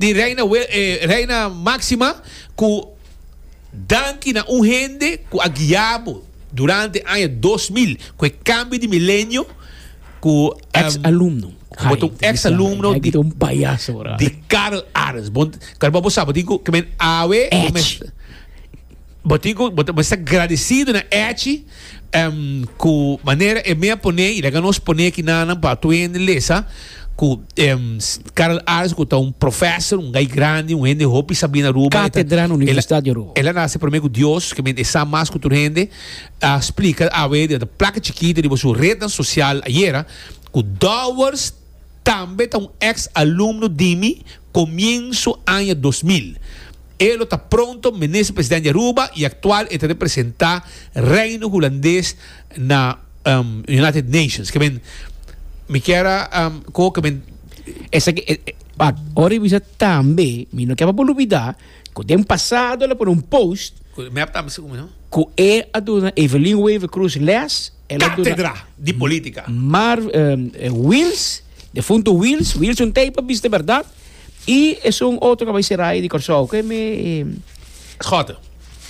di Reina Reina Maxima cu danki na un hende cu a guiabo durante aña dos mil cu e cambio di milenio cu Ex alumno. Bo ta un ex alumno di, un payaso ahora. Di Karl Arends. Bon, Karl, bo sabo tin cu kemen awe. Bo tin cu bo ta mester gradecido na Echi cu manera e mea pone y laga nos pone aki nanan pa tur hende lesa cu Karl Ars cu ta un professor, un guy grandi, un hende hopi sabi na Aruba. Catedra na Universidad di Aruba. El a nace prome cu Dios, que mente e sa mas cu tur hende, a splica awe di un plaka chikito riba su rednan social ayera cu dowers, tambe ta un ex alumno di mi comienzo aña dos mil. E lo ta pronto Minister President di Aruba y actual e ta representa Reino Hulandes na United Nations. Kiben mi kier a coge kiben. Esaki e but ora e bisa tambe mi no kier pa bo lubida cu den pasado el a pone un post cu e a duna Evelyn Wever Cruz les. Cátedra di Política. Mar, eh, Wils, defunto Wils, Wilson Teipa, bis de berdad. I esun otro ka bai seraye di Kòrsou, ke me... Schotte.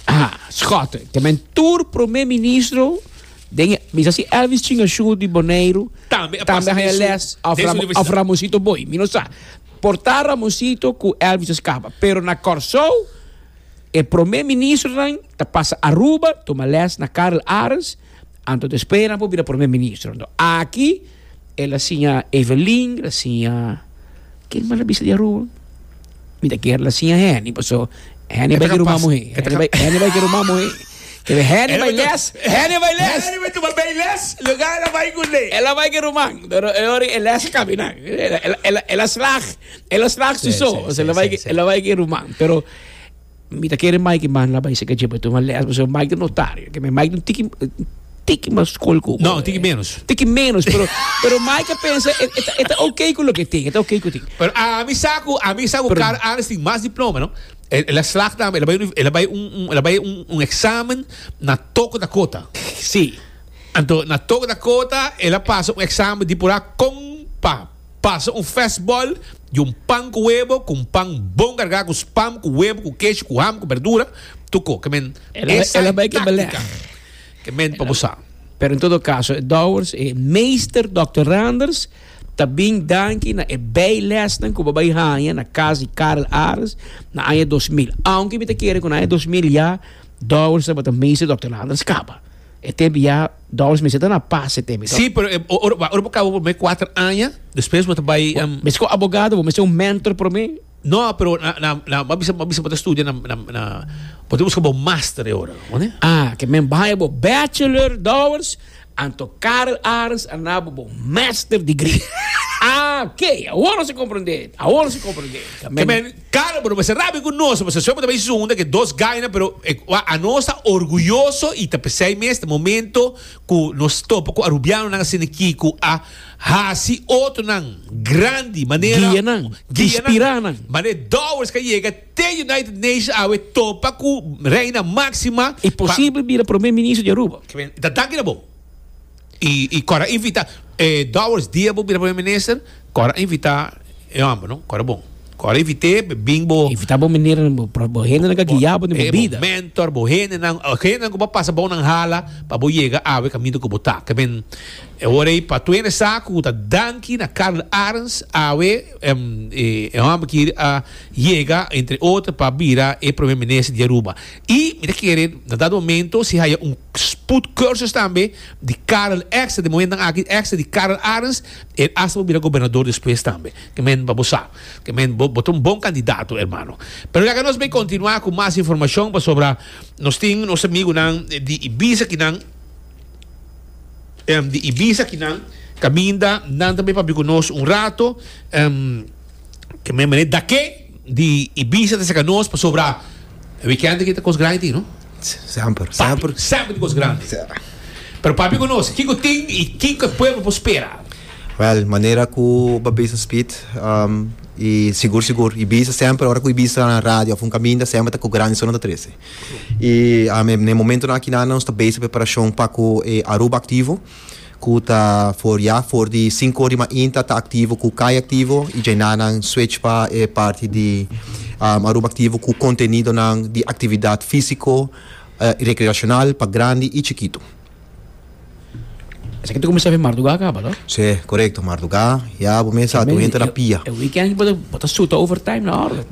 Ah, Schotte. Te men tur promé ministro den e, mi sa si Elvis Chingashu di Boneiru. Tambe a pasa den su, les of, den su Ram, of universidad. Ramosito Boi, mi no sa. Por ta Ramosito ku Elvis a skapa, pero na Kòrsou, E prome ministronan ta pasa Aruba tuma les na Karl Arends anto ta espera nan por bira prome ministro. Anto aki el a siña Evelyn, el a siña ken mas el a bisa di Aruba? Mi ta kere el a siña Henny paso Henny bai ki ruman muhé, Henny bai ki ruman muhé. Kende Henny bai les, Henny bai les. Henny bai tuma bay les, luga el a bai ku lei. El a bai ki ruman, pero e ora e les a kabina, el a slag. Ela strak su so, o sea, ela bai, ela bai ke ruman, pero mi ta kere Mike man la bai seka jeba tu un les, pasobra Mike ta notario, ke me Mike un tiki tiki mas skol ku No, tiki menos. Tiki menos, pero pero Mike a pensa e e ta ok ku loke tin, e ta ok ku tin. Pero ami sa ku, ami sa ku Carl Arends tin mas diploma, no? Ela strak tambe, ela bai un, ela bai un, ela bai un, un examen na Toco Dakota. Si. Anto na Toco Dakota ela pasa un examen di por a con pa Pasa un fest ball di un pan ku webo ku un pan bon kargá ku spam ku webo ku kesh ku ham ku berdura tu ko kemen esa e táktika kemen pa bo sa. Pero en todo kaso e dowers e Meester Dòkter Randers ta bin danki na e bèi lèsnan ku bo bai haña na kas di Karel Arends na aña dos mil. Ounke mi ta kere ku na aña dos mil ya dowers tabata Meester Dòkter Randers kaba e tempu ya. Doris, Mester ta na pas e teme, to? Sí, pero e ora bo ora bo kaba promé kuater aña, despues bo ta bai. Bo mester ku abogado, bo mester un mentor promé. No, pero na na na m'a bisa m'a bisa bo ta studia na na na bo ta buska bo master e ora, oné? Ah, ke men bai bo bachelor, Doris, anto Karel Arends a naba bo master degree. Ah, ke awor nan si komprendé, awor nan si komprendé. Ke men. Karo, pero mester rabia ku nos, mester sufri tambe esun den ke dos gaina, pero e kua anos ta orguyoso i ta p'esei mes te momento ku nos topa ku arubianonan asina aki ku a hasi otronan grandi manera Guia nan, guia nan inspirá nan. mane Dowers ka yega te United Nations awe topa ku Reina Máxima E pa posible bira Prome Minister di Aruba. Kiben, i ta danki na bo. Y core a invita e Dowers dia bo bira primer minister core a invita e homber no core bon core a invite be bin bo Invita bo miner bo hendenan cu a guia bo den bo bida. mentor bo hendenan o hendenan cu bo a pasa bo nan hala pa bo yega awe caminto cu bo ta kiben e ora ey pa tuende sa cu ta danki na Carl Arends awe e homber kiri a yega entre otro pa bira e primer minister di Aruba Y mi ta kere na dado momento si haya un spoed cursus tambe di Karel Exter, den momentonan aki Exter di Karel Arens, e asta por bira gobernador despues tambe. Ke men pa bo sa. Ke men bo bo ta un bon candidato hermano. Pero leka nos bay continua cu mas informacion pasobra nos tin nos amigunan di Ibiza aki nan em di Ibiza aki nan caminda nan ta bay papia cu nos un rato em ke men mene dake. di Ibiza ta serka nos pasobra weekend aki ta kos grandi tin no. Semper, semper. Papi, semper di kos grandi. Sa. Pero papi ku nos, kiko tin i kiko e pueblo por spera? Wel, manera ku babes nos spit, um, i sigur sigur Ibiza semper ora ku Ibiza ta na radio of un kaminda semper ta ku grandi so nan ta trese. I um, e na e momentonan akinan nos ta bezig preparashon pa ku e Aruba Aktivo. ku ta for ya for di sinku or di mainta ta aktivo ku kai aktivo i djai na nan switch pa e parti di Aruba Aktivo ku kontenidonan di aktividat fisiko i rekreashonal pa grandi i chikitu. Esaki ta kuminsá fin mardugá a kaba, no? Sí, korekto. Mardugá ya bo mes a Tambe, entra na pia. E weekend bo ta suta overtime na òrder.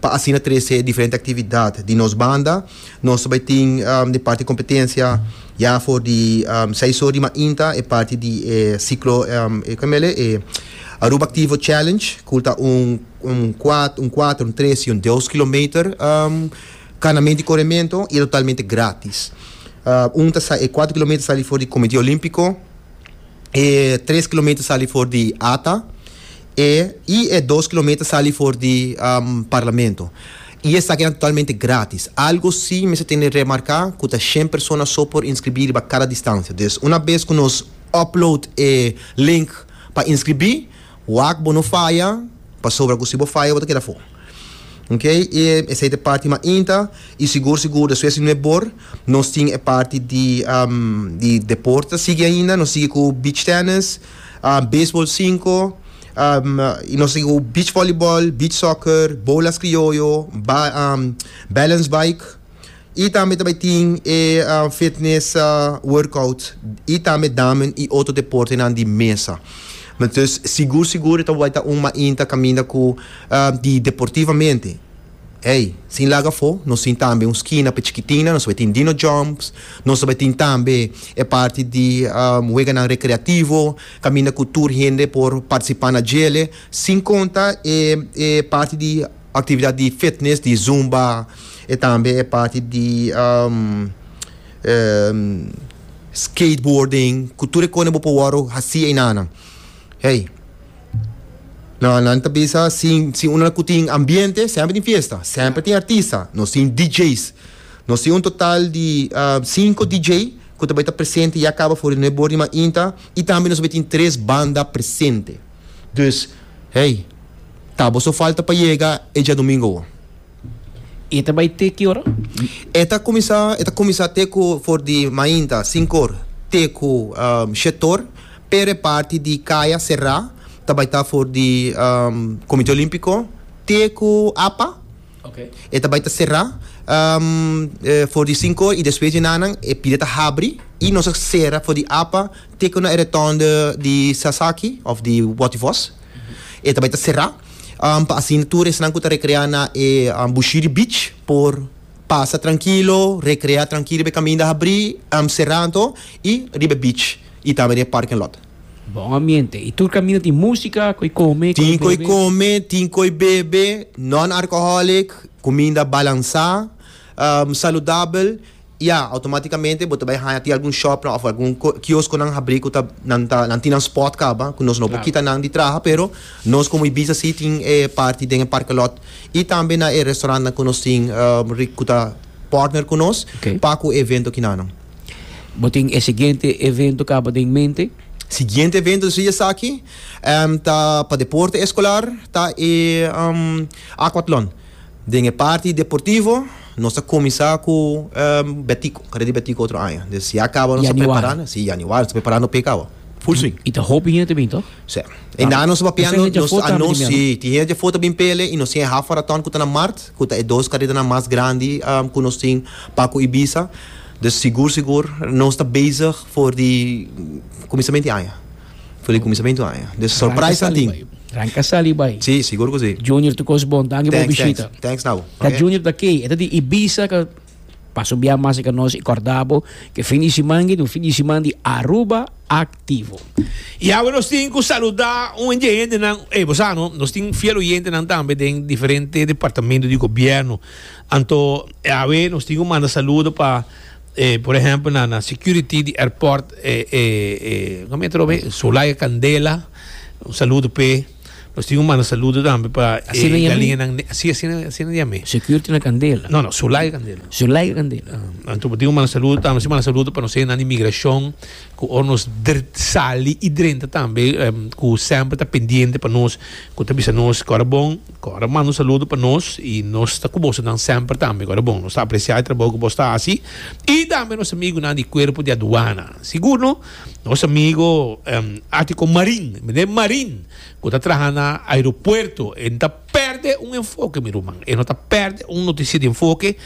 Pa asina trese diferente actividad. Di nos banda, nos ta bay tin e parti competencia ya for di seis or di mainta, e parti di e ciclo, e con mele? E Aruba Activo Challenge, cul ta un un cuat, un cuater, un tres y un deus kilometer canamento y corimento y e totalmente gratis. Un ta sa, e cuater kilometer sali for di Comite Olimpico, e tres kilometer sali for di ata. E i e dos kilometer sali for di Parlamento. I esaki ta totalmente gratis. Algo si mester tende remarka ku ta shen persona so por inskribí riba kada distansia. Dus una bes ku nos upload e link pa inskribí, wak bo no faya pasobra ku si bo faya bo ta keda afó. Ok. E esei ta e parti mainta i sigur sigur despues di nuep bor nos tin e parti di deporte ta sigui ainda. Nos sigui ku beach tennis. ah, baseball cinco, um, y nos a go beach volleyball, beach soccer, bolas criollo, ba, um, balance bike. Y tambe ta bay tin e uh, fitness uh, workout y tambe damen y otro deporte nan di mesa. Entonces, sigur sigur ta bay ta un mainta caminda cu uh, di deportivamente. Ey, sin laga afó, nos tin tambe un skina p'e chikitinnan, nos ta bai tin Dino Jumps, nos ta bai tin tambe e parti di weganan rekreativo, kaminda ku tur hende por partisipá na djel'e, sin konta e e parti di aktividat di fitnes, di zumba, e tambe e parti di skateboarding, ku tur e kosnan bo por wòrdu hasí einanan. Hey. No, nan ta bisa sin, sin una cu tin ambiente, semper tin fiesta, semper tin artista. Nos tin DJ's. Nos tin un total di uh, cinco DJ cu ta bay ta presente ya caba for di Nuevo Bor di Mainta y tambe nos bay tin tres banda presente. Dus, hey, ta boso falta pa yega e diadomingo. E ta bai te ki ora? E ta kuminsá e ta kuminsá te ku for di mainta, sinkor, te ku shetor, pero e parti di kaya será ta bai ta for di Komite Olímpiko te ku apa. E ta bai ta será for di sinkor i despues di nanan e pida ta habri i nos a sera for di apa te ku na e retònde di Sasaki òf di Wòttivos. E ta bai ta será pa asina tur esnan ku ta rekreá na e Bushiri Beach por pasa trankilo, rekreá trankilo riba e kaminda habrí, será anto, i riba e beach i tambe den e parking lot. Bon ambiente. I tur kaminda tin músika, ko'i kome, ko'i bebe? Tin ko'i kome, tin ko'i bebe, non-alcoholic, kuminda balansá, saludabel. Ya, automáticamente bo ta bai haña tin algun shopnan òf algun kioskonan habrí ku ta nan ta nan tin nan spòt kaba ku nos no por kita nan di traha pero nos komo Ibiza si tin e parti den e parkelòt i tambe na e restaurantnan ku nos tin ri ku ta pòrtner ku nos pa ku e evento kina nan. Bo tin e siguiente evento kaba den mente? Siguiente evento si esaki ta pa deporte eskolar ta e Aquatlon. Den e parti deportivo nos ta kuminsá ku Betico, kare di Betico otro aña. Des ya kaba nos ta prepará, si, yaniwari, nos ta prepará no p'e kaba. Full swing. I ta hopi hende bin tòg? Sí. E nan nos papia nos anons, si, tin hende dja afó ta bin pele i nos tin e haf maratòn ku ta na mart, ku ta e dos karedanan mas grandi ku nos tin pa ku Ibiza. Des sigur sigur nos ta bezig for di kuminsament di aña. For di kuminsamentu aña. Des surprise nan tin. Ranka sali bai. Si, sigur ku si. Junior tu kos bon. Danki bo bishita. Thanks, thanks. Thanks, Nabo. Ka Junior ta kei. E ta di Ibiza ka pasa un biaha mas riba nos. I kòrda bo ku e fin di siman aki ta un fin di siman di Aruba aktivo. I awe nos tin ku saluda un hende hendenan. Ey, bo sa no, nos tin fiel oyentenan tambe den diferente departamentu di gobièrnu. Anto awe nos tin ku manda saludo pa. E por ehempel na na security di airport e e e como e trobe Solaya Candela un saludo pe nos tin un manda saludo tambe pa Así e no yami? galinha nan ne- así así na- así na yame Security na Candela. no no Solaya Candela Zulay Candela. Ah, anto tin un manda saludo tambe si manda saludo pa nos e nan di migracion ku or nos dr sali i drenta tambe em, ku semper ta pendiente pa nos ku ta bisa nos kora bon Ko ora manda un saludo pa nos y nos ta ku bosonan semper tambe ko ora bon. Nos ta aprecia e trabou ku bos ta hasi y tambe nos amigunan di cuerpo di aduana. Sigur no? Nos amigo Atico Marin, mende Marin ku ta traha na aeropuerto e no ta perde un enfoke mi ruman. E no ta perde un noticia di enfoke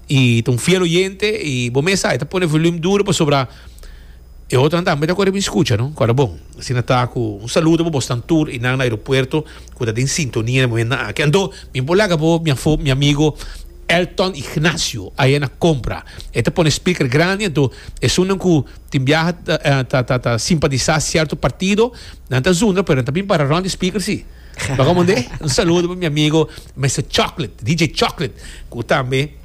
y ta un fiel oyente y bo mes sa e ta pone volume duro pasobra. E otro nan tambe ta kore bin skucha no kòrda bon. Asina ta ku un saludo pa bosnan tur i nan na aeropuerto ku ta den sintonia na e momentnan aki. Anto mi por laga bo mi afó mi amigo Elton Ignacio aya na Compra. E ta pone speaker grandi anto esunnan ku tin biaha ta ta ta simpatisá sierto partido nan ta zundra pero nan ta bin para rònt di speaker si. Bakamon de un saludo pa mi amigo Mister Chocolate DJ Chocolate ku tambe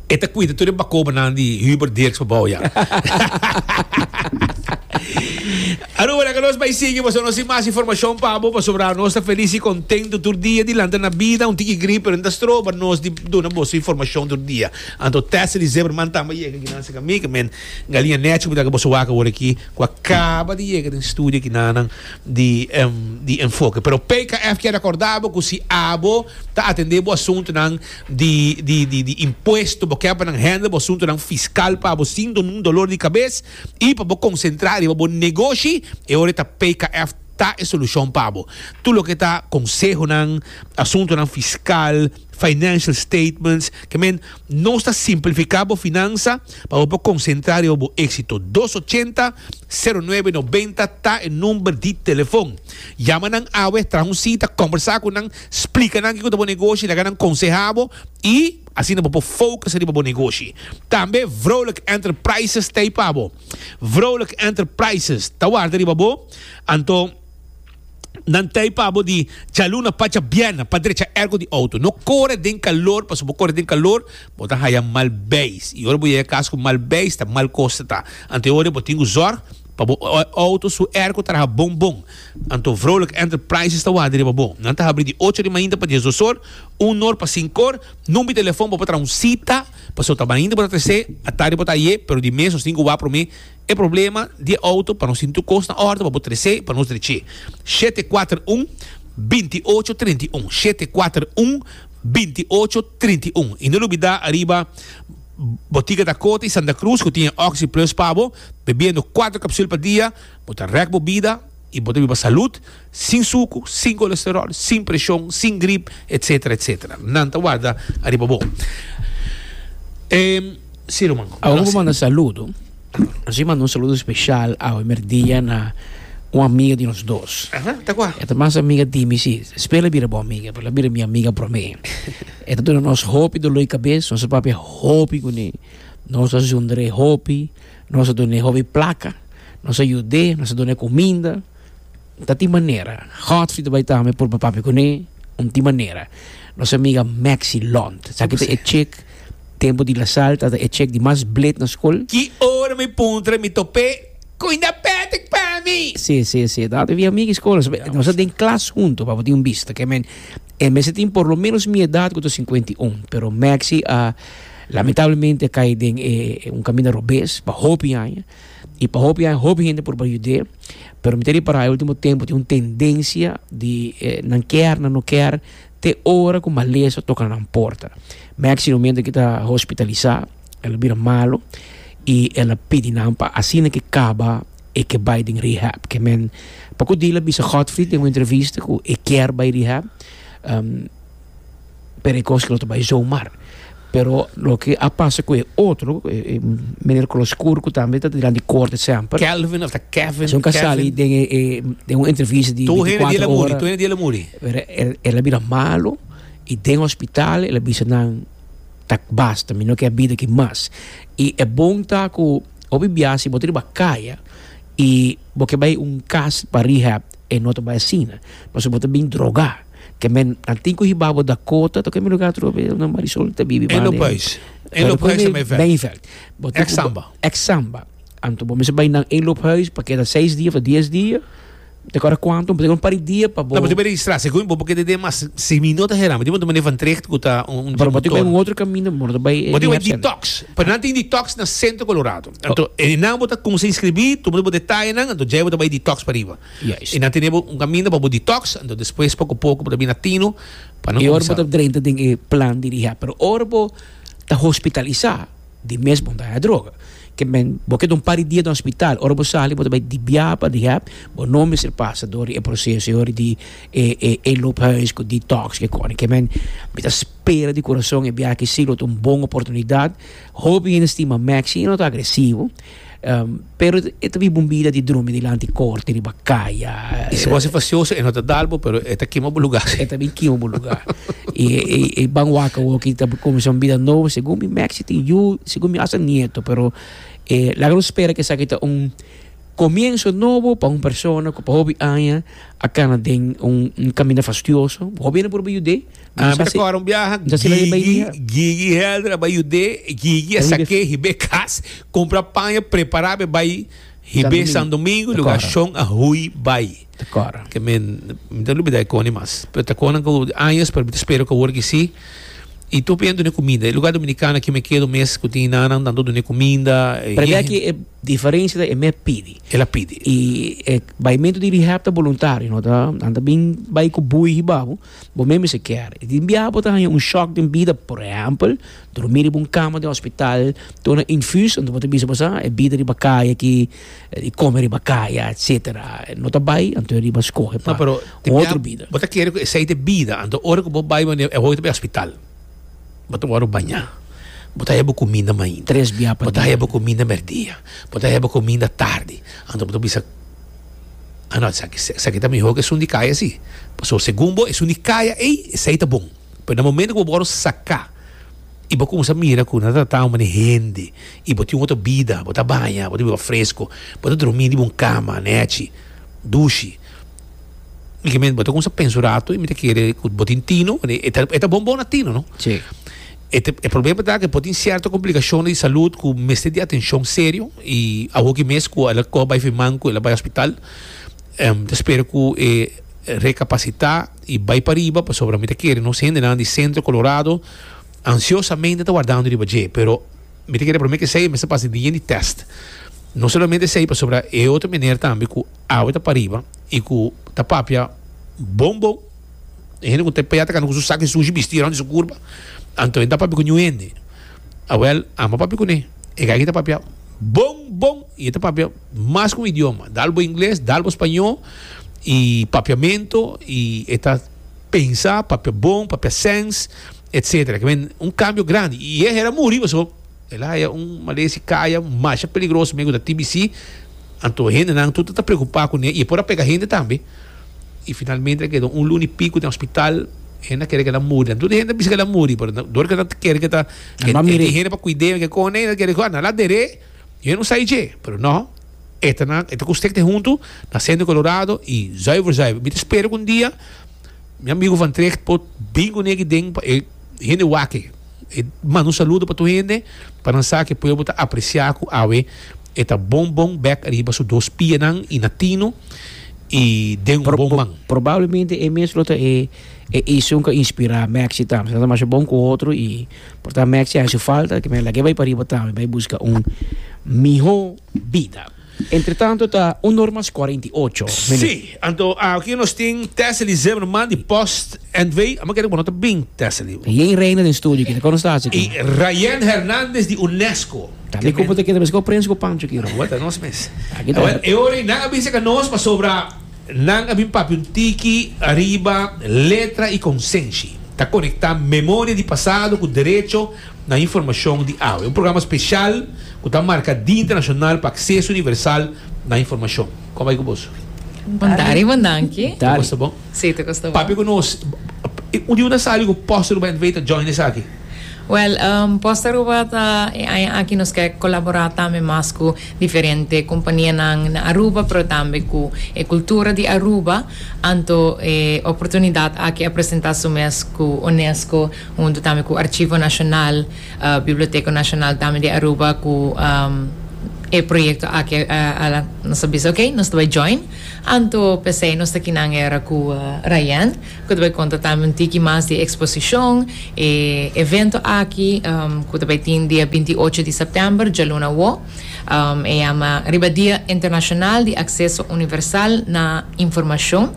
E ta cuida tur e bacobanan di Hubert Dirks pa bouya. Aruba, la que nos bai sigui, boso nos sin más información pa bo, pasobra nos ta feliz y contento tur día dilante na vida, un tiki grip, pero ta stroba nos di duna boso información tur día. Anto Tessely Zimmerman tamba yega aki nan cerca mi, que men Galia Necho, mita que boso wak awor aki, cu a caba di yega den studio aki na nan di, di Enfoke. Pero PKF kier recorda bo cu si abo ta atende bo asuntonan, di di di di impuesto bo kèr pa nan hènde bo asuntunan fiskal pa bo sin nun dolor di kabes i pa bo konsentrá riba bo negoshi e ora e ta PKF ta e solushon pa bo tur loke ta konsehonan asuntunan fiskal financial statements ke men nos ta simplifiká bo finansa pa bo por konsentrá riba bo éksito dos ochenta sero nuebe nobenta ta e number di telefon yama nan awe traha un sita kòmbersá ku nan Splika nan kiko ta bo negoshi, laga nan konseha bo i asina bo por focus riba bo negoshi. Tambe Vrolijk Enterprises ta ei pa bo. Vrolijk Enterprises ta warda riba bo, anto nan ta ei pa bo di djaluna pacha bièrnè pa drecha ergo di outo. No kore den kalor, pasobra bo kore den kalor bo ta haya mal beis i ora bo yega kas ku mal beis ta mal kos ta ta. Anto e ora ei bo tin ku zòrg. Pa bo auto su airco traha bon bon. Anto Vrolijk Enterprises ta ward'e riba bo. Nan ta habri di ocho di mainta pa dies dosor, un nor pa sinkor. Number di telefon pa bo traha un cita, pasobra ta mainta bo ta trece, atardi bo ta aye, pero di mes nos tin cu wak prome e problema di e auto pa nos tin tur cos na orde pa bo trece, pa nos dreche. Shete kuater un, binti ocho, trinta i un. Shete kuater un, binti ocho, trinta i un. I no lubida ariba Botica Dakota i Santa Cruz cu tin e Oxi Plus pa bo. Bebiendo cuatro capsul pa dia, bo ta rek bo bida y bo ta biba salud, sin sucu, sin colesterol, sin presion, sin grip, etc. Etc. Nan ta warda ariba bo. Ehm, si ruman. Awe cu bo manda saludo, nos a manda un saludo special awe merdia na un amiga di nos dos. Aha, ta cua? E ta mas amiga di mi, si. Spela a bira bo amiga, pero el a bira mi amiga prome. E ta duna nos hopi dolor di cabes, nos a papia hopi cu ne. Nos a zundr'é hopi, nos a dun'é hopi plaka, nos a yud'é, nos a dun'é kuminda. Ta tin manera. Godfrey ta bai tambe por papia ku n'é un tin manera. Nos amiga Maxie Lont, esaki ta e chik tempu di Lasal ta e chik di mas blid na skol. Ki ora mi puntra mi top'é ku inda pètik pa mi. Sí, sí, sí, ta amiga di skol. Nos a den klas huntu, papia tin un bista. E mester tin por lo menos mi edad cu ta cincuenta y un, pero Maxi a lamentablemente a cay den e un caminda robes pa hopi aña y pa hopi aña hopi hende por ba yud'é pero mi ta repara e ultimo tempo tin un tendencia di nan kier nan no kier te ora cu malesa toca nan porta Maxi lo miente cu ta hospitalisa el a bira malo y el a pidi nan pa asina ke caba e ke bai den rehab ke men poko dia la bisa Godfrey den un entrevista ku e kier bai rehab pero e kos lo ta bai zomaar pero loke a pasa ku e otro e meneer kolor skur ku tambe ta dilanti di kort semper Kelvin of ta Kevin esun ka sali den e den un entrevista di tu hende di el a muri tu hende di el a muri pero el a bira malo i den hospital el a bisa nan ta basta mi no ke a bida aki mas i e bon ta ku. Hopi bia si bo ta riba kaya y bo ke bay un kas pa rehab e no ta bay asina pasobra bo ta bin droga ke men nan tin ku hiba bo Dakota ta kue lugar atrobe unda Marisol ta bibi Elo Pais Elo Pais ta Meinveld Meinveld bo tin ku Examba Examba anto bo mester bay nan Elo Pais pa keda seis dia of ta dies dia. Te acorda cuanto un pari di dia pa bo. No, bo tin registra. Segun bo bo keda den mas si mi no ta hera mi tin manda manefa un traject cu ta un gym motor. Bo tin bai un otro camino bo manda bai. Bo tin bai detox. Pero nan tin detox na Centro Colorado. Anto e nan bo ta cuminsa inscribi tu manda bo detayenan anto djei bo ta bai detox pariba. Juist. E nan tene bo un camino pa bo detox anto despues poco poco bo ta bina tino pa nan cuminsa. E ora bo ta drenta den e plan di rehab. Pero ora bo ta hospitalisa. di mes bo daña droga ke men bo ke ta un par di dia den hospital ora bo sali bo ta bai di biaha pa rehab bo no mester pasa door di e proceso e ora di e e e loophuis ku detox ke kore ke men mi ta spera di corazon e biaha akí si lo ta un bon oportunidad hopi hende stima Maxi i no ta agresivo. Pero e ta biba un bida di drumi dilanti korti riba kaya. I si bo hasi fasioso, e no ta dalbo, pero e ta kima bo lugá. E ta bin kima bo lugá. I e ban wak awor ki ta kuminsá un bida nobo, segun mi Maxi tin yu, segun mi hasta nieto, pero laga nos spera ku esaki ta un komienso nobo pa un persona ku pa hopi aña a kana den un kaminda fastioso. Bo hobina por bai yud'é. Ah, Bisa basi- kora un biaha Bisa sila di Gigi, Bahia. Gigi Helder a bai Judé, Gigi a Ribe- sak'é hibé kas, kumpra paña, prepará be bai hibé San San Domingo, Domingo, lugar kora. Shon a hui bai. Te kora. Ke men, mi ta lubidá e koni mas. Pero ta konan ku años, pero mi ta spera ku awor ki sí. I tur bien dun'é kuminda. E lugá Dominikana aki mi keda un mes ku tin i nannan, tantu dun'é kuminda. e Pero mira yehen. aki e diferensia ta e mes pidi. El a pidi. I e baimentu di rehab ta boluntario, no ta nan ta bin bai ku bui hibabo. Bo mester bisa kier e tin biaha bo ta haña un shock den bida, por ehèmpel, durmí riba un kama den hospital, duna infus, anto bo ta bisa bo sa e bida riba kaya aki, e kome riba kaya, etcetera. No ta bai, anto e riba skohe pa un otro bida. Bo ta kere ku esei ta e bida, anto ora ku bo bai bo e hoyo ta bai hospital, bo ta wòrdu bañá, bo ta haña bo kuminda mainta, bo ta haña bo kuminda mèrdia, bo ta haña bo kuminda tardi, anto bo ta bisa. Ah no, esaki ta mihó ku esun di kaya si. Pasobra segun bo esun di kaya ei, esei ta bon. Pero na momentu ku bo wòrdu saká i bo kuminsá mira ku nan ta tratá un manera diferente i bo tin un otro bida, bo ta baña, bo ta biba fresko, bo ta dromí riba un kama nèchi, dushi, mi ke bo ta kuminsá pensa un ratu i mi ta kere ku bo tin tino, e ta bon bo na tino, no? E problema ta ke por tin sierto komplikashonnan di salud ku mester di atenshon serio i awoki mes ku el a kohe bai firman ku el a bai hospital ta spera ku e rekapasitá i bai pariba pasobra mi ta kere nos hendenan di Sentro Kolorado ansiosamente ta wardando riba dje pero mi ta kere promé ke esei e mester pasa dien di tèst no solamente esei pasobra e otro meneer tambe ku awe ta pariba i ku ta papia bon bon. E hende ku ta paya ta kanta ku su saki sushi bisti rònt di su kurpa. Anto e ta papia ku ñuhende. Awèl, amba papia kuné. E gay ki ta papia bon, bon i e ta papia mas ku un idioma. Dal bo ingles, dal bo spañó i papiamentu i e ta pensa papia bon, papia sèns, etcétera. Ke bai un kambio grandi. I e hera muri pasobra. El a haya un malezi kaya masha peligroso mei ku ta TBC, anto hendenan tur ta ta preokupá kuné i e por a pega hende tambe. I finalmente a keda un luna i piku den hospital, hende a kere ku el a muri la. Tur di hende a bisa ku el a muri, pero dor ku el ta kere ku ta e tin hende pa kuid'é i kon e ta kere ku nan a der'é, yo no sai dje, pero nò, e ta nan e ta ku stekte huntu na Sènter Kolorado i zuiver zuiver mi ta spera ku un dia mi amigu van Tricht por bin kuné aki den pa e hende wake e manda un saludo pa tur hende pa nan sa ke pueblo ta aprecia ku awe e ta bon bon bek riba su dos pianan i na tino i den un bon man. Probablemente e mes lo ta e e esun ku a inspira Maxi tambe. Asina ta masha bon ku otro i por ta Maxi a haci falta ke men lag'e bai pariba tambe bai buska un miho. bida. Entretanto ta un normas cuarenta y ocho, meneer. Sí, anto aki nos tin Tessely Zimmerman di Post Antwee. Amo kere ku bo no ta bing, Tessely. Ta Jane Reina den studio aki, ta kono stasi aki? I Rayen Hernandez di UNESCO. Ta mi kupu ta keda mes ku Prince ku Pancho aki, Ron. Awor ta nos mes. Aki ta. Awor e ora ei nan a bisa ka nos pasobra nan a bin papia un tiki ariba letra i konsenshi. Ta konektá memoria di pasado ku derecho. Na informashon di awe. Un programa speshal ku ta marka Dia Internashonal pa Akseso Universal na Informashon. Kon bai ku boso? Bon tardi, bon danki. Toko Tardi. sta bon? Si, toko sta bon. Papia ku nos. Un di una sali ku Post Aruba NV ta join esaki. Wèl, Post Aruba ta e aña aki nos ke kolaborá tambe mas ku diferente kompanianan na Aruba, pero tambe ku e kultura di Aruba. Anto e oportunidat aki a presentá su mes ku UNESCO. huntu tambe ku Archivo Nacional, Biblioteco Nacional tambe di Aruba ku e proyekto aki a nos a bisa oke nos ta bai join anto p'esei nos ta kinan era ku Rayan ku ta bai konta tambe un tiki mas di e eksposishon e evento aki ku ta bai tin dia binti i ocho di sèptèmber djaluna awo e yama riba Dia Internashonal di Akseso Universal na Informashon.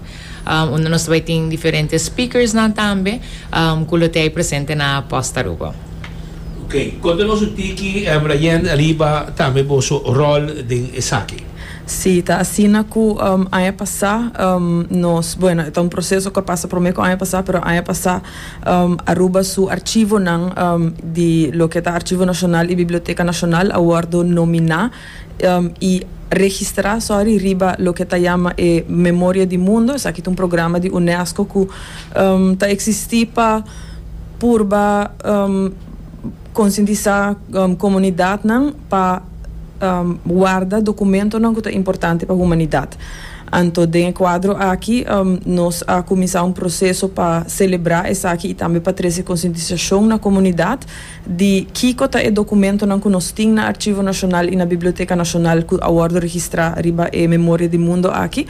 unda nos ta bai tin diferente speakersnan tambe ku lo t'ei presente na pòst Aruba. Ok, konta nos un tiki, Brayen, ariba tambe boso ròl den esaki. Sí, ta asina ku aña pasá nos, bueno e ta un proseso ku a pasa promé ku aña pasá, pero aña pasá Aruba su archivonan di loke ta Archivo Nashonal i Biblioteka Nashonal a wòrdu nominá, y registra sorry riba loke ta yama e Memoria di Mundo, esaki ta un programa di UNESCO cu ta existi pa purba conscientisa comunidadnan pa warda documentonan cu ta importante pa humanidad. Anto den e cuadro aki nos a cuminsa un proceso pa celebra esaki y tambe pa trece conscientisacion na comunidad. di kiko ta e dokumentonan ku nos tin na Archivo Nacional i na Biblioteca Nacional ku a wòrdu registrá riba e Memoria di Mundo aki,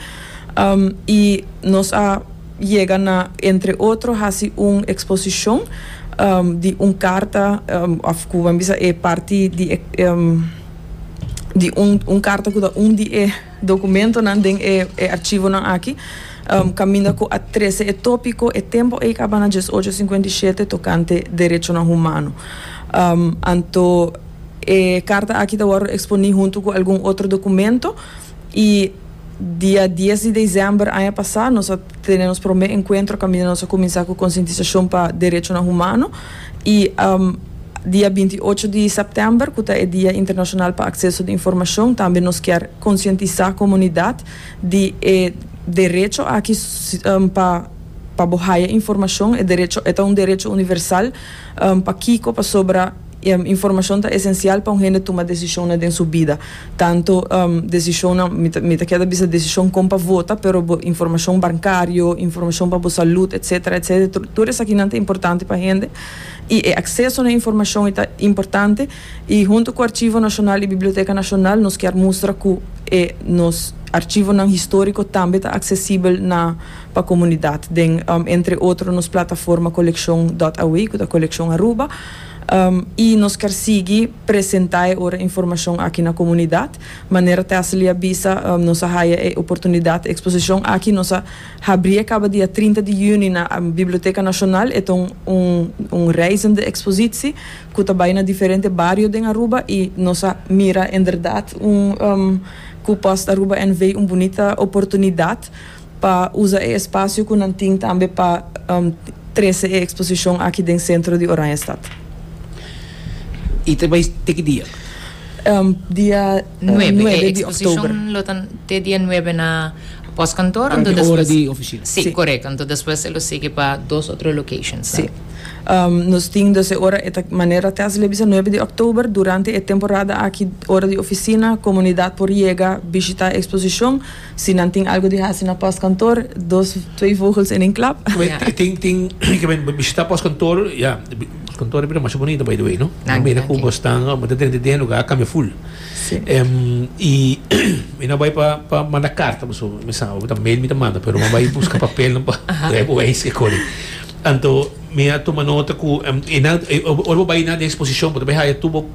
i nos a yega na entre otro hasi un eksposishon di un karta òf ku bo a bisa e parti di e di un karta ku ta un di e. Dokumentonan den e archivonan aki kaminda ku a trese e topiko e tempo ei kaba na djes ocho sinkuenta i shete tokante derechonan humano. Anto e karta aki ta wòrdu eksponí huntu ku algun otro dokumento i dia dies di desèmber aña pasá nos a tene nos promé enkuentro kaminda nos a kuminsá ku konsientisashon pa derechonan humano. I dia binti i ocho di sèptèmber, ku ta e Dia Internashonal pa Akseso di Informashon, tambe nos kier konsientisá komunidat di e derecho aki pa pa bo haya informashon. E derecho e ta un derecho universal. Pakiko? Pasobra informashon ta esensial pa un hende tuma desishonnan den su bida. Tanto desishonnan, mi ta keda bisa desishon kon pa vota, pero bo informashon bankario, informashon pa bo salud, etsetera, etsetera, tur esakinan ta importante pa hende, i e akseso na informashon ei ta importante, i huntu ku Archivo Nacional i Biblioteka Nacional nos kier mustra ku e nos archivonan historiko tambe ta aksesibel na pa komunidat den entre otro nos plataforma Coleccion dot awe ku ta Coleccion Aruba, i nos kier sigui. presenta e ora informashon aki na komunidat. Manera Tessely a bisa, Nos a haya e oportunidat eksposishon aki, nos a habrí e kaba dia trinta di yüni na Biblioteka Nashonal, e ta un un reizende ekspositsi ku ta bai na diferente bario den Aruba i nos a mira inderdat un ku Post Aruba NV. un bunita oportunidat. pa usa e espasio ku nan tin tambe pa trese e eksposishon aki den sentro di Oranjestad. I ta bai te ki dia? Dia nuebe di òktober. E eksposishon lo ta te dia nuebe na pòskantor anto despues? Durante ora di ofisina. Si, korèk. Anto despues e lo sigui pa dos otro lokashons. Si. Nos tin dus e ora, e ta manera te hasi lei bisa nuebe di òktober. Durante e temporada aki ora di ofisina komunidat por yega bishitá e eksposishon. Si nan tin algo di hasi na postkantoor, dos, twee vogels en een klap. Tin, tin, ke men bishita postkantoor, ya, postkantoor e bira masha bonito by the way no, nan mira ku bo stan, bo ta drenta den lugá a kambia ful, i mi no bai pa pa manda karta paso mi sa abo ta mail mi ta manda pero mi a bai buska papelnan pa trae bo eis ke kore, anto mi a tuma nota ku e nan ora bo bai na den ekspozishon bo ta bai haya tur bo.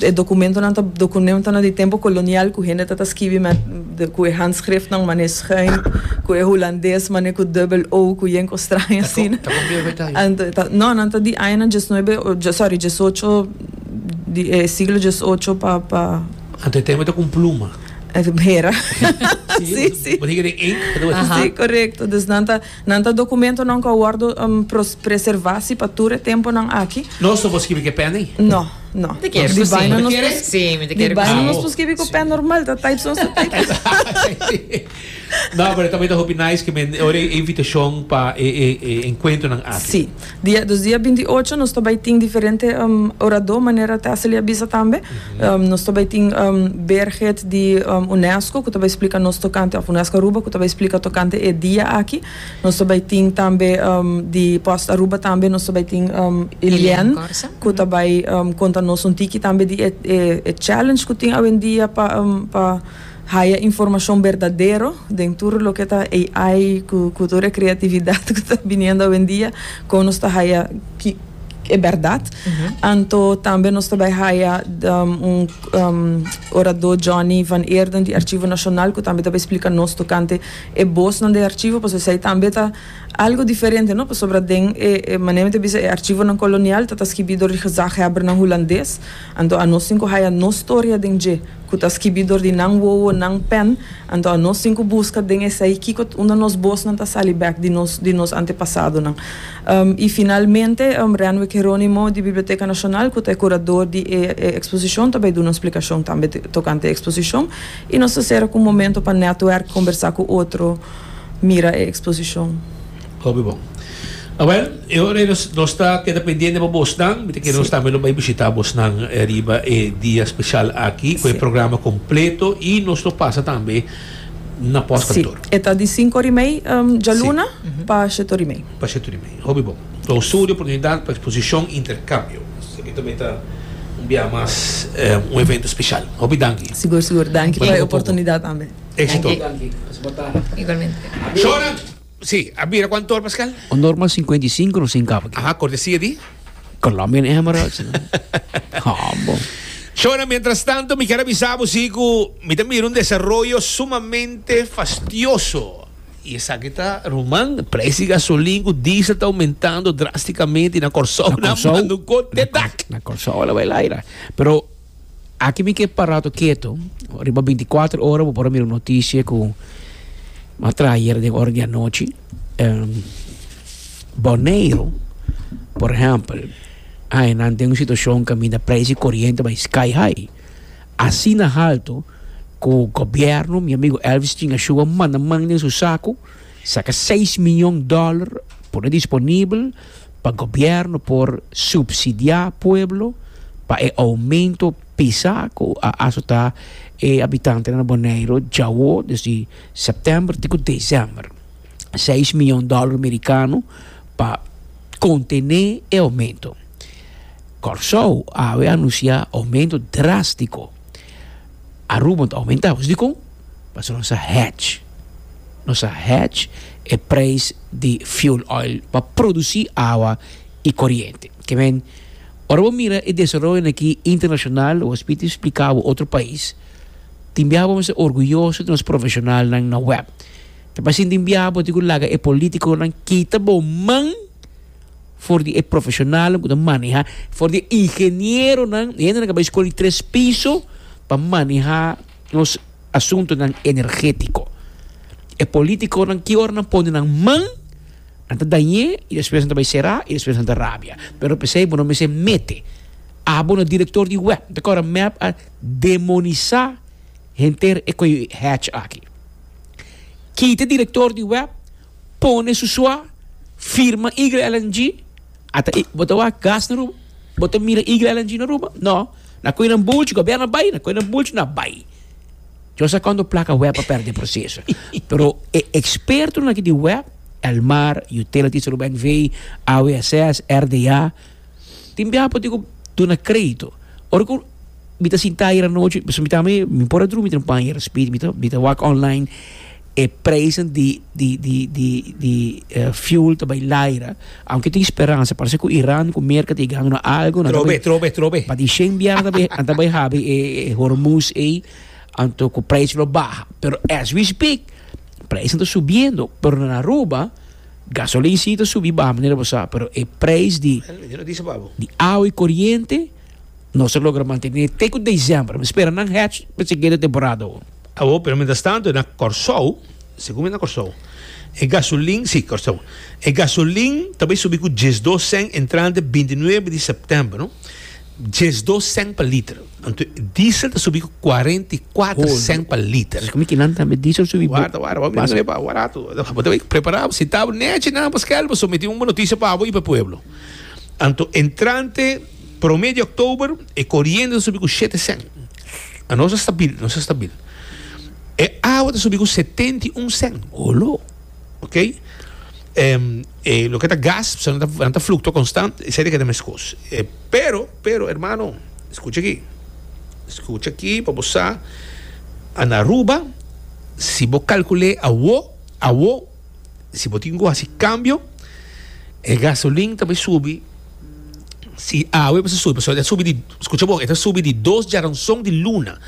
E dokumentonan ta dokunemtonan di tempu kolonial ku hende ta ta skibi ku e handskriftnan manera schuin, ku e hulandes manera ku dubbel o ku yen kos straño asina. Ta kopiá bai ta aña? No, nan ta di añanan diesnuebe, sòri, diesocho di e siglo diesocho pa pa. Anto e tempu ta ku un pluma. Hera. Si, si. Bo tin ke den ink pa ta bai. Si, korekto. Dus nan ta Nan ta dokumentonan ku a wòrdu preservá si pa tur e tempunan aki. Nos no por skibi ku e pèn ei? No, no. Mi ta kere ku si. Mi ta kere? Si, mi ta kere ku si. Di baino nos por skibi ku pèn normal, ta type so so type. No, pero tambe ta hopi nice ku men ora e invitashon pa e enkuentronan aki. Si. Dia dos dia binti ocho nos ta bai tin diferente oradó manera te a sali a bisa tambe. Nos ta bai tin Birgit di Unesco ku ta bai splika nos tokante òf UNESCO Aruba ku ta bai splika tokante e dia aki. Nos ta bai tin tambe di Post Aruba tambe nos ta bai tin Eliane ku ta bai konta nos un tiki tambe di e challenge ku tin awendia pa pa. Haya informacion berdadero den tur loke ta AI cu cu tur e creatividad cu ta biniendo awendia con nos ta haya ki e berdad. Anto tambe nos ta bay haya un orador Johnny van Eerden di Archivo Nacional cu tambe ta bay splica nos tocante e bosnan den archivo pasobra esay tambe ta algo diferente no pasobra den e manera mi ta bisa e archivonan colonial ta ta skibi dor di gezaghebbernan Hulandes. Anto a nos tin ku haya nos storia den dje, ku ta skibi dor di nan wowo, nan pèn. Anto a nos tin ku buska den esei kiko unda nos bosnan ta sali bèk di nos di nos antepasadonan. I finalmente, Renwick Hieronimo di Biblioteka Nashonal, ku ta e kurador di e e eksposishon, ta bai duna un splikashon tambe tokante e eksposishon. I nos ta sera ku un momento pa nètwèrk, kombersá ku otro, mira e eksposishon. Hopi bon. Awel, e ora ei nos ta keda pendiente pa bosnan. Mi ta kere nos tambe lo bai bishita bosnan riba e dia speshal aki ku e programa kompleto i nos lo pasa tambe na pòstkantor. Si, e ta di sinku orimei djaluna pa sheti orimei. Pa sheti orimei. Hopi bon. Klausura di oportunidat pa eksposishon interkambio. Esaki tambe ta un biaha mas un evento speshal. Hopi danki. Sigur, sigur. Danki pa e oportunidat tambe. Éksito. Danki. Danki. Pasa botana. Igualmente. Shora! Sí, a bira cuan tor Pascal? Un normal cincuenta y cinco nos sin cabo. Aha, cortesia di? Colombian Emirates. Humble. Shona, mientras tanto, mi quiero avisar vos sí cu mi te mira un desarrollo sumamente fastioso. Y esaki ta ruman, prijs di gasolin cu diesel ta aumentando drasticamente na Corsou, na Manduco te dak. Na Corsou la bay laira. Pero. Aki mi ke parato keto, riba binti i kuater ora bo por a mira un notisie ku a traha ayera den ora di anochi, Boneiru por ehèmpel a e nan den un situashon kaminda preis di koriente bai sky high, asina haltu ku gobièrnu, mi amigu Elvis Chinga Shua manda man den su saku saka seis miyon dòler pone disponibel. pa gobierno por subsidia pueblo pa e aumento pisa cu a azota e habitantenan na Boneiro djawo desdi September ti cu December. Seis mion dollar mericano pa contene e aumento. Corsow awe a anuncia aumento drastico. Aruba ta omentá, pues dikon? Pasobra nos a hedge, nos a hedge e preis di fuel oil pa produsí awa i koriente. Ke men, ora bo mira e desaroyonan akí internashonal, wos pidi spliká bo otro pais, tin bia bo mester orguyoso di nos profeshonalnan na web. Ta pasintin bia bo tin ku laga e polítikonan kita bo man. For di e profeshonalnan ku ta manehá, for di e ingenieronan, e hendenan ku a bai skol di tres piso pa manehá nos asuntunan energétiko. E polítikonan ki ora nan pone nan man, nan ta dañ'é i despues nan ta bai será i despues nan ta rabia. Pero p'esei bo no mester mete abo na direktor di web. Nan ta kòrda mèp a demonisá henter e koyo hatch aki. Kita direktor di web. pone su sua firma Eagle Island G ata i bo ta wak gas na Aruba bo ta mira Eagle Island G na Aruba no na koy nan bulchi gobierno a bai na koy nan bulchi no a bai yo a sa kondo plaka web a perde proceso pero e expertonan aki di web Elmar utilities Aruba NV AWSS RDA Tin biaha por tin cu duna crédito. Ora cu mi ta sintá ayer anochi, pasobra mi ta ami, mi por a drumi den un paña ayer aspiet, mi ta, mi ta wak online, e prijzen di, di, di, di, di fuel ta bai laira, aunke tin speransa, parse cu Iran cu Merka ta e gana algo, nan ta Trobe, bai, trobe, trobe. pa di shen biaha nan ta bai, nan ta bai habi e, e Hormuz ei, anto cu prijs lo baha. Pero as we speak, prijzen ta subiendo, pero na Aruba. Gasolin si ta subi baha manera bo sa, pero e prijs di di awa i koriente no sa logra mantené te ku desèmber. Mi spera nan hèch pa si keda temporada hopi. Awor, pero mientras tanto na Kòrsou, segun mi na Kòrsou, e gasolin, si, Kòrsou, e gasolin ta bai subi ku diesdos sèn entrante binti nuebe di sèptèmber, no. diesdos cent pa liter. Anto diesel ta subi cu cuarenta y cuatro cent pa liter. Así cu mi tin nan tambe diesel subi bo. Warda, warda, bo mira pa barato. Bo ta bay prepara bo si tabo nechi nan pa skel bo someti un bo noticia pa bo y pa pueblo. Anto entrante prome di october e coriente ta subi cu shete cent. A nos a stabil, nos a stabil. E awa ta subi cu setenta y un cent. Olo. Ok e loke ta gas so nan ta fluktua konstant esei ta keda meskos e pero pero hermano skucha aki skucha aki pa bo sa a na Aruba si bo kalkule awo awo si bo tin ku hasi kambio e gasolin ta bai subi si awe a basa subi pasobra e ta subi di skucha bon e ta subi di dos jaranson di luna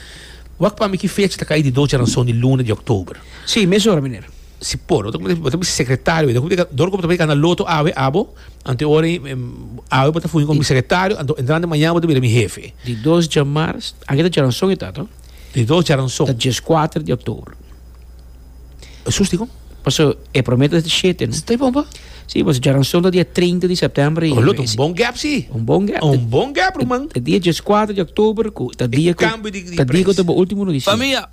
wak pa mi ki fecha ta kai di dos jaranson di luna di october. Sí, mesora, miner. Si por, bo ta bo mi sekretario, wete hopi dor ku bo ta mira kana loto awe abo, ante ora i awe bo ta fungí komo mi sekretario, anto entrante mañana bo ta bira mi hefe. Di dos dja mars, aki ta djaranson e ta, to? Di dos djaranson. Ta djes kuater di oktobro. Jesús di kon? Paso e prome ta di shete, no? Ta e bon pa? Sí, paso djaranson ta dia treinta di sèptèmber i. Oh, lo ta un bon gèp, sí. Un bon gèp. Un bon gèp, ruman. Ta dia djes kuater di oktobro ku ta dia ku. E kambio di près. Ta dia ku ta bo último notisia.